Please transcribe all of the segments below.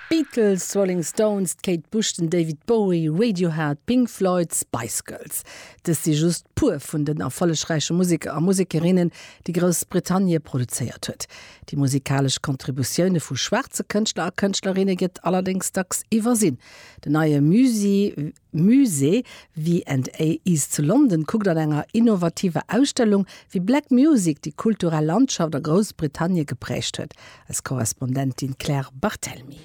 D'Beatles, d'Rolling Stones, d'Kate Bush, den David Bowie, Radiohead, d'Pink Floyd, d'Spice Girls. Dëst si just puer vun den erfollegräiche Museker a Musekerinnen, déi Groussbritannie produzéiert huet. Déi musikalesch Contributioune vu schwaarze Kënschtler a Kënschtlerinne gëtt allerdéngs dacks iwwersinn. Den neie Musée. Musée V and A East zu London kuckt an enger innovativer Ausstellung, wéi Black Music déi kulturell Landschaft a Groussbritannie geprägt huet. Eis Korrespondentin Claire Barthelmy.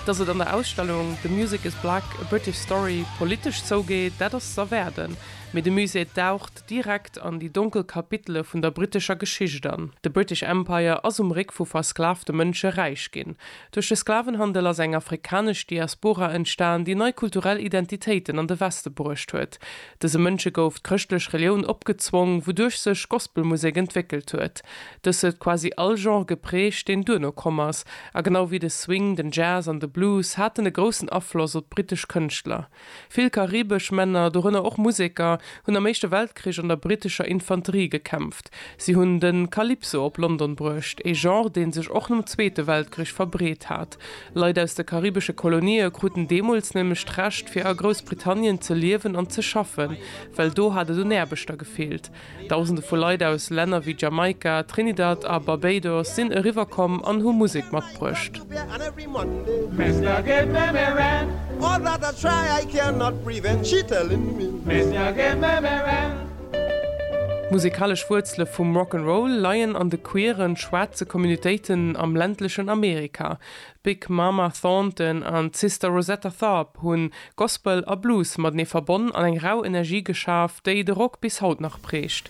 Dass et an der Ausstellung The Music is Black, A British Story politesch zougeet, dat ass z'erwaarden, mee de Musée daucht, direkt an déi donkel Kapitele vun der brittescher Geschicht an. De British Empire ass um Réck vu versklavte Mënsche räich ginn. Duerch de Sklavenhandel ass eng afrikanesch Diaspora entstan, déi nei kulturell Identitéiten an de Weste bruecht huet. Dëse Mënsche gouf d'chrëschtlech Relioun opgezwong, wouduerch sech Gospelmusek entwéckelt huet. Dës huet quasi all Genre geprägt, deen duerno komm ass, a genau wéi de Swing, den Jazz an de Blues haten e groussen Afloss op d'brittesch Kënschtler. Vill karibesch Männer, dorënner och Museker, hunn am Éischte Weltkrich an der brittescher Infanterie gekämpft. Si hunn de Calypso op London bruecht, ee Genre, dee sech och nom Zweete Weltkrich verbreet hat. Leit aus de karibesche Kolonië kruten deemools nämlech d'Recht, fir a Groussbritannien ze liewen an ze schaffen, well do hat et un Aarbechter gefeelt. Dausende vu Leit aus Länner wéi Jamaika, Trinidad a Barbados sinn eriwwer komm an hu Musek matbruecht. D'musekalesch Wuerzele vum Rock 'n' Roll leien an de queeren, schwaarze Communitéiten am ländlechen Amerika. D'Big Mama Thornton an d'Sister Rosetta Tharpe hunn Gospel a Blues matenee verbonn an eng rau Energie geschaf, déi de Rock bis haut nach prägt.